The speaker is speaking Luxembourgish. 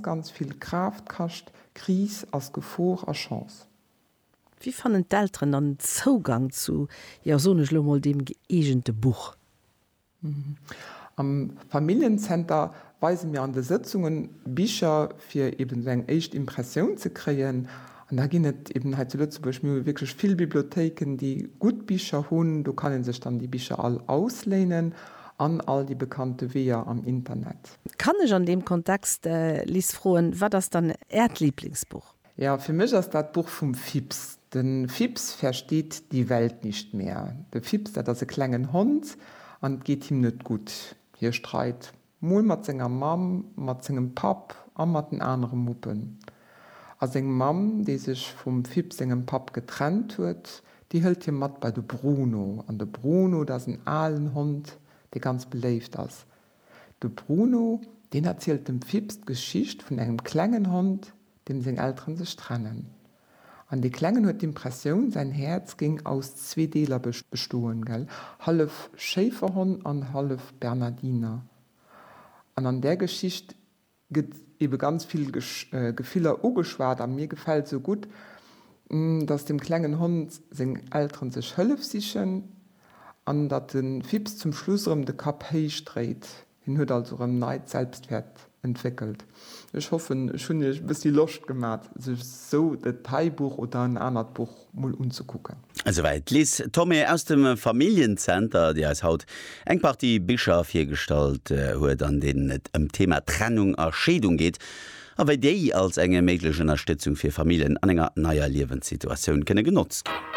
Ganz vill Kraaft kascht. Kris ass Gefor a Chance. Wéi fannen d'Elteren dann den Zougang zu, jo, soen ech elo mol, deem gëeegente Buch? Am Familljenzenter weise mir an de Sëtzungen Bicher, fir eben esou eng éischt Impressioun ze kréien. An da ginn et eben hei zu Lëtzebuerg, mir hu wierklech vill Bibliothéiken, déi gutt Bicher hunn, do kann ee sech dann déi Bicher all ausléinen an all déi bekannte Weeër am Internet. Kann ech an deem Kontext, Lis, froen, wat ass dann Äert Lieblingsbuch? Jo, fir mech ass dat d'Buch vum Fips. De Fips versteht die Welt nicht mehr. De Fips, dat ass e klengen Hond an et geet him net gutt. Hie streit mol mat senger Mamm, mat sengem Papp a mat den anere Muppen. A seng Mamm, déi sech vum Fips sengem Papp getrennt huet, déi hëlt hie mat bei de Bruno. An de Bruno, dat ass en alen Hond, dee ganz beléift ass. De Bruno, deen erzielt dem Fips d'Geschicht vun engem klengen Hond, deem seng Elteren sech trennen. An dee Klengen huet d'Impressioun, säin Häerz géing aus zwee Deeler bestoen, gell? Hallef Schéiferhonn an hallef Bernardiner. An an där Geschicht. gëtt ebe ganz vill Gefiller ugeschwat a mir gefält esou gutt, datt dem klengen Hond seng Elteren sech Hëllef sichen an datt de Fips zum Schluss erëm de Kapp héich dréit. Hien huet also erëm neit Selbstwäert entwéckelt. Ech hoffen ech hunn iech e bëssi Loscht gemat sech esou e Detailbuch oder en anert Buch mol unzekucken. Esouwäit d'Liz Thomé aus dem Familljenzenter, déi eis haut eng Partie Bicher virgestallt huet, an deenen et ëm d'Thema Trennung a Scheedung geet a wéi déi als eng méiglech Ënnerstëtzung fir Familljen an enger neier Liewenssituatioun kënne genotzt ginn.